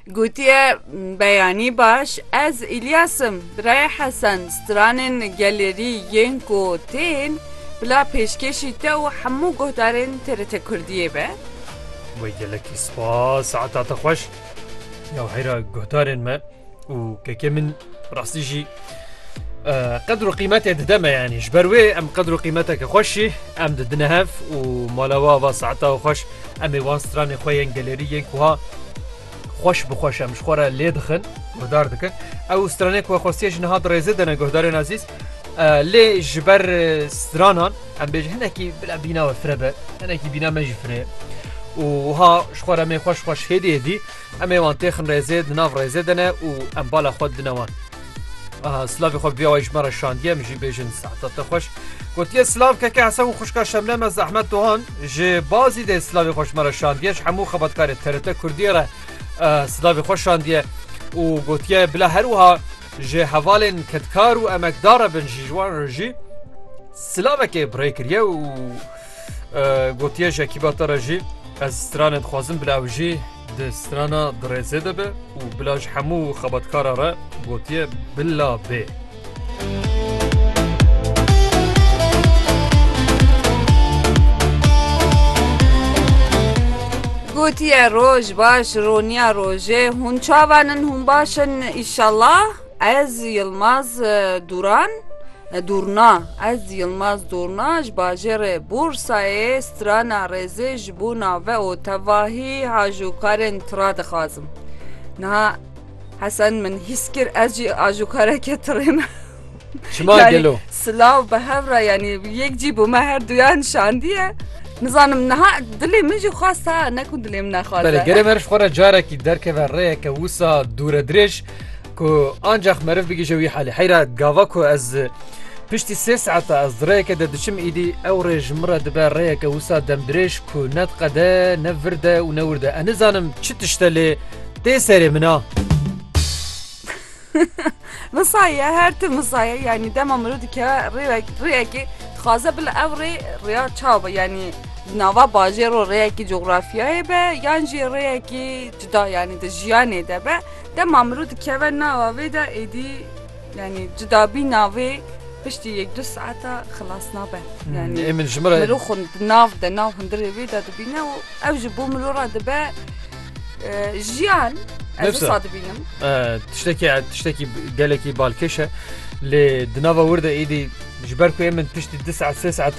Gotiye beyanî baş ez İlyas im, birayê Hesen, stranên gelêrî yên ku tên bila pêşkêşî te û hemû guhdarên TRT Kurdiyê be. Wê gelekî spas ata te xweş. Ya heyra guhdarên me. û kekê min rastî jî qedr û qîmetê dide me yanî ji ber wê em qedr û qîmeteke xweşî em didine hev û malawa va saeta xweş em ê wan stranê xwe yên gelerî yên kuha xweş bi xweş em ji xwe re lê dixin guhdar dikin ew stranê ku xwestiye ji niha dirêzê dene guhdarên azîz lê ji ber stranan em bêj hinekî bila bîna we fire be hinekî bîna me jî firê û ha ji xwe re mê xweş xweş hêdê dî Em ê wan têxin rêzê di nav rêzê de ne û em bala xwe dine wan. Aha silavê xwe vîya wayî ji me re şandiye min jî bêjin saeta te xweş. Gotiye silav keke Hesen û xwişka Şemle me Zehmet Dohan ji Bazî dê silavê xwe ji me re şandiye ji hemû xebatkarê TRT Kurdiyê re silavê xwe şandiye û gotiye bila her wiha ji hevalên kedkar û emekdar re bin jî ji wan re jî silavekê bi rê kiriye û Gotiye Jekîba te re jî ez stranê dixwazim bila ew jî di strana dirêzê de be û bila ji hemû xebatkara re gotiye bila bê. Gotiye roj baş roniya rojê hûn çavan in hûn baş in îşallah. Ez Yilmaz Duran Durna Ez Yilmaz Durna ji bajêrê Bursayê strana rêzê ji bo nave û tevahî hajokarên tira dixwazim. Niha Hesen min hîs kir ez jî ajokareke tirê me. Çima gelo? Silav bi hev re yanî yek cî bû me her duyan şandiye. Nizanim niha dilê min jî xwest ha ne ku dilê min nexwaze. Belê gerê me ji xwe re carekî derkeve rêyeke wisa dûre dirêj Ku ancak meriv bigije wî halê. Heyra gava ku ez Piştî sê saeta ez di rêyeke de diçim îdî ew rê ji min re dibe rêyeke wisa demdirêj ku ne diqede ne vird e û ne wurd e. Ez nizanim çi tişt e lê tê serê min a. Misaye her tim misaye yanî dema miro dike rêyekê dixwaze bila ew rê rêya çaw be yanî nava bajêr û rêyekî coxrafyayê be yan jî rêyekî cuda yanî di jiyanê de be. Dema mirov dikeve nava vê de êdî yanî cudabîna vê piştî yek du saeta xilas nabe. Yanî Ê min ji min re mirov xwe di nav de nav hundirê vê de dibîne û ew jî bo mirov re dibe e, jiyan. Ez Nefse. wisa dibînim. e, tiştekî tiştekî gelekî balkêş e. Lê di nava wir de êdî ji ber ku ê min piştî du saet sê saet